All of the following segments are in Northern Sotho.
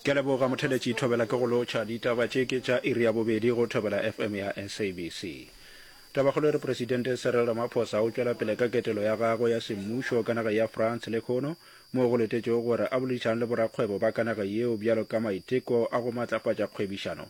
Ke a leboga motheletši Thobela ke go lotšha ditaba tše ke tša iri ya bobedi go Thobela FM ya SABC. Tabakgolo e re Presidente Cyril Ramaphosa o tšwela pele ka ketelo ya gagwe ya semmušo ka nageng ya France lehono moo go letetšego gore a boledišane le borakgwebo ba ka nageng yeo bjalo ka maiteko a go matlafatša kgwebišano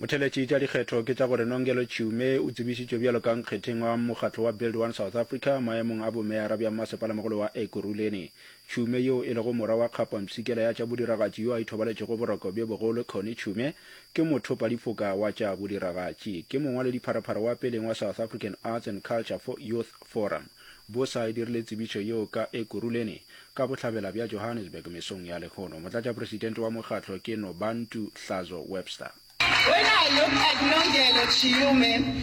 motheletši tša dikgetho ke tša gore nongelo tšhume o tsebišitšwe bjalo ka nkgetheng wa mokgatlo wa build one south africa maemong a bomeara bja mmasepalamogolo wa ekuruleni tšhume yeo e lego mora wa kgapwa mpshikela ya tša bodiragatši yo a ithobaletšego boroko bjo bogolo conny tšhume Ke mothopadiphoka wa tša bodiragatši. Ke mongwaledipharapara wa peleng wa South African Arts and Culture for Youth Forum. Bosa e dirile tsebišo yeo ka Ekurhuleni, ka bohlabela bja Johannesburg mesong ya lehono. Motlatšapresidente wa mokgatlo ke Nobantu Hlazo Webster. When I look at Nongelo Chiyume,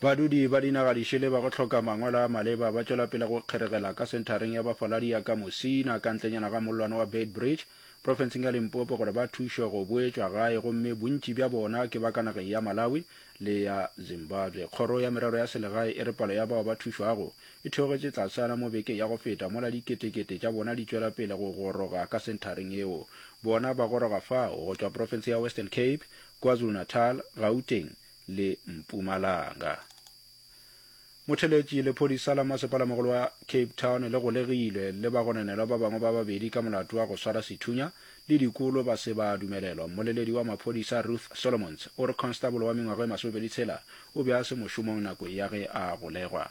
badudi ba dinaga dišele ba go hloka mangwalo a maleba ba tšwela pele go kgeregela ka senthareng ya bafaladi ya ka mosina ka ntlenyana ga mollwane wa beitbridge profenseng ya limpopo gore ba thušwe go boetšwa gae gomme bontši bja bona ke ba ka nageng ya malawi le ya zimbabwe kgoro ya merero ya selegae e re palo ya bao ba thušwago e theogetše tlasana mo beke ya go feta mola diketekete tša bona di tšwela pele go goroga ka senthareng yeo. Bona ba goroga fao go tšwa profense ya Western Cape, KwaZulu-Natal, Gauteng le Mpumalanga. Motheeletši, lephodisa la masepalamogolo wa Cape Town le golegilwe le bagononelwa ba bangwe ba babedi ka molato wa go swara sethunya le dikolo ba se ba dumelelwa. Mmoleledi wa maphodisa Ruth Solomons o re konstabolo wa mengwaga e masomepedi tshela o be a se mošomong nako ya ge a golegwa.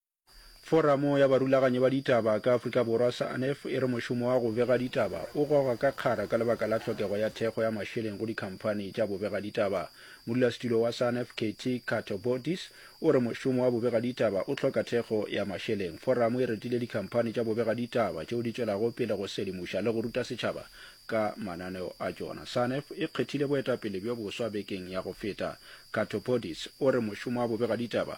Foramo ya Barulaganyi ba Ditaba ka Afrika Borwa, SANEF, e re mošomo wa go bega ditaba o goga ka kgara ka lebaka la tlhokego ya thekgo ya mašeleng go dikhamphani tša bobegaditaba. Modulasetulo wa SANEF, Katie Katobodis, o re mošomo wa bobegaditaba o hloka thekgo ya mašeleng. Foramo e retile dikhamphani tša bobegaditaba tšeo di tšwelago pele go sedimoša le go ruta setšhaba ka mananeo a tšona. SANEF e kgethile boetapele bjo boswa bekeng ya go feta. Katobodis o re mošomo wa bobegaditaba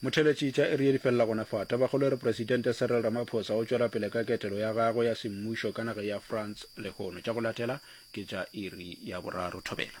Motheeletši tša iri ye di felela gona fa. Tabakgolo e re Presidente Cyril Ramaphosa o tšwela pele ka ketelo ya gagwe ya semmušo ka nageng ya France lehono. Tša go latela ke tša iri ya boraro. Thobela.